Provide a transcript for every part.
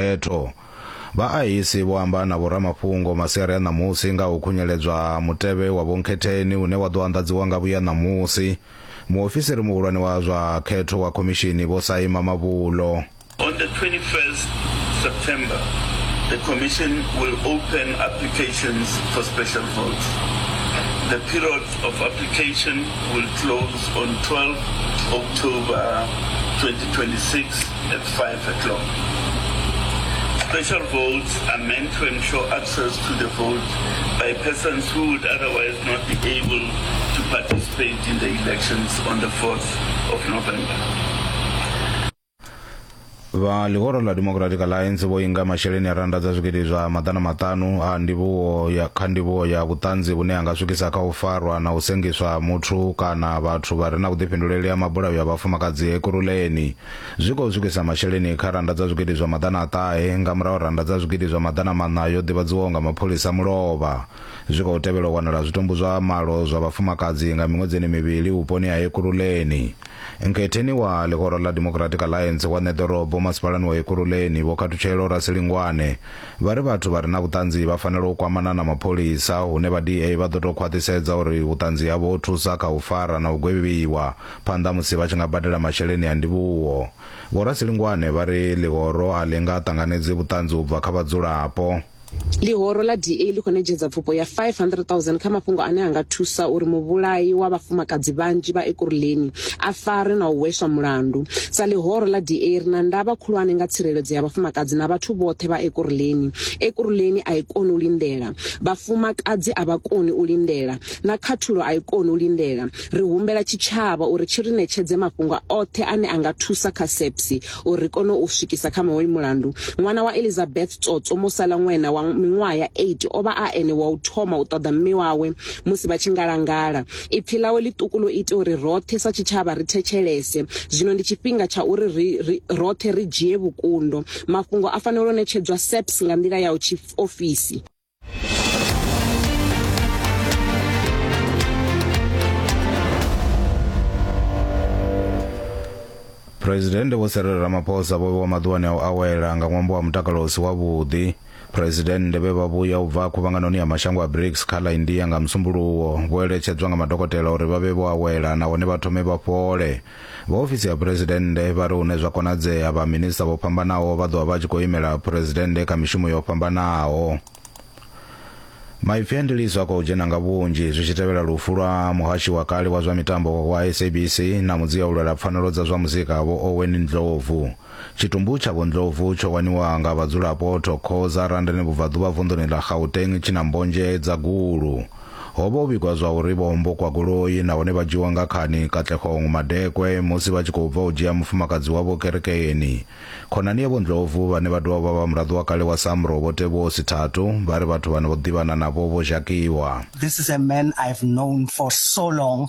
Phetho. Vhaahisi vho amba na vhoramafhungo masiari a ṋamusi nga u khunyeledzwa ha mutevhe wa vhonkhetheni une wa ḓo anḓadziwa nga vhuya ṋamusi. Muofisiri muhulwane wa zwa khetho wa khomishini Vho Saima Mavhulo. On the 21st September, the Commission will open applications for special votes. The period of application will close on 12 October 2026. at 5:00. Special votes are meant to ensure access to the vote by persons who would otherwise not be able to participate in the elections on the 4th of November. vha ḽihoro ḽa democratic alliance vho inga masheleni a rannda dza zwigidi zwa maḓana maṱanu a ndivhuwo ya kha ndivhuwo ya vhuṱanzi vhune ha nga swikisa kha u farwa na u sengiswa ha muthu kana vhathu vha re na vhuḓifhinduleli ha mabulayo a vhafumakadzi ekurhuleni zwi khou swikisa masheleni kha rannda dza zwigidi zwa maḓana a ṱahe nga murahu rannda dza zwigidi zwa maḓana maṋa yo ḓivhadziwaho nga mapholisa mulovha zwi khou tevhela u wanala zwitumbu zwa malo zwa vhafumakadzi nga miṅwedzini mivhili vhuponi ha ekuruleni nkhetheni wa ḽihoro ḽa democratic alliance wa ṋeḓorobo masipalani wa ekuruleni vho khathutshelo rasilingwane vha ri vhathu vha re na vhuṱanzi vha fanela u kwamana na mapholisa hune vha da vha ḓo tou khwaṱhisedza uri vhuṱanzi havho ho thusa kha u fara na u gwevhiwa phanḓa musi vha tshi nga badela masheleni a ndivhuwo vhorasilingwane vha ri ḽihoro a ḽi nga ṱanganedzi vhuṱanzi u bva kha vhadzulapo ḽihoro ḽa da ḽi khou netshedza pfufho ya 500000 kha mafhungo ane a nga thusa uri muvhulayi wa vhafumakadzi vhanzhi vha ekuruleni a fare na u hweswa mulandu sa ḽihoro ḽa da ri na ndavha khulwane nga tsireledzo ya vhafumakadzi na vhathu vhoṱhe vha ekuruleni ekuruleni a i koni u lindela vhafumakadzi a vha koni u lindela na khathulo a i koni u lindela Ri humbela tshitshavha uri tshi ri ṋetshedze mafhungo oṱhe ane a nga thusa kha SAPS uri ri kone u swikisa kha hoyu mulandu. Ṅwana wa Elizabeth Tsotso Mosala Ngwena wa miṅwaha ya 8 o vha a ene wa u thoma u ṱoḓa mme wawe musi vha tshi ngalangala. Ipfi ḽawe ḽiṱuku ḽo ita uri roṱhe sa tshitshavha ri thetshelese. Zwino ndi tshifhinga tsha uri ri ri roṱhe ri dzhie vhukundo. Mafhungo a fanela u ṋetshedzwa SAPS nga nḓila ya u tshiofisi. phuresidennde vho serere ramaphosa vho vhewa maḓuvhani a u awela nga ṅwambo wa mutakalo u si wavhuḓi phuresidennde vhe vha vhuya u bva khuvhanganoni ya mashango a brics kha ḽa india nga musumbuluwo vho eletshedzwa nga madokotela uri vha vhe vho awela nahone vha thome vha fhole Vha ofisi ya phuresidennde vha ri hune zwa konadzea vha minista vho fhambanaho vha ḓovha vha tshi khou imela phuresidennde kha mishumo yo fhambanaho. Maipfi a ndiliso a khou dzhena nga vhunzhi zwi tshi tevhela lufu lwa muhashi wa kale wa zwa mitambo wa SABC na mudzia u lwela pfanelo dza zwa muzika vho Owen Ndlovu. Tshitumbu tsha Vho Ndlovu tsho waniwa nga vhadzulapo Thokoza, Randene Vhubvaḓuvha vunḓuni ḽa Gauteng tshi na mbonzhe dza gulu. Ho vha ho vhigwa zwa uri vho hombokwa goloi nahone vha dzhiiwa nga khani Katlehong Madekwe musi vha tshi khou bva u dzhia mufumakadzi wavho kerekeni. Khonani ya Vho Ndlovu vhane vha dovha vha vha vha muraḓo wa kale wa SAMRO Vho Teboho Sithathu vha ri vhathu vhane vho ḓivhana navho vho zhakiwa. This is a man I've known for so long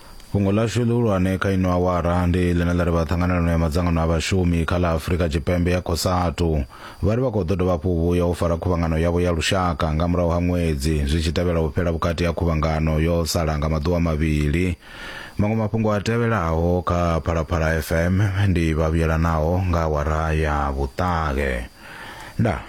Fhungo ḽashu ḽihulwane kha ino awara ndi ḽine ḽa ri vha ṱhanganelano ya madzangano a vhashumi kha ḽa Afurika Tshipembe ya Cosatu vha ri vha khou ḓo dovha hafhu vhuya u fara khuvhangano yavho ya lushaka nga murahu ha ṅwedzi zwi tshi tevhela u fhela vhukati ha khuvhangano yo sala nga maḓuvha mavhili. Maṅwe mafhungo a tevhelaho kha Phalaphala FM ndi vha vhuyelanaho nga awara ya vhuṱahe. Ndaa.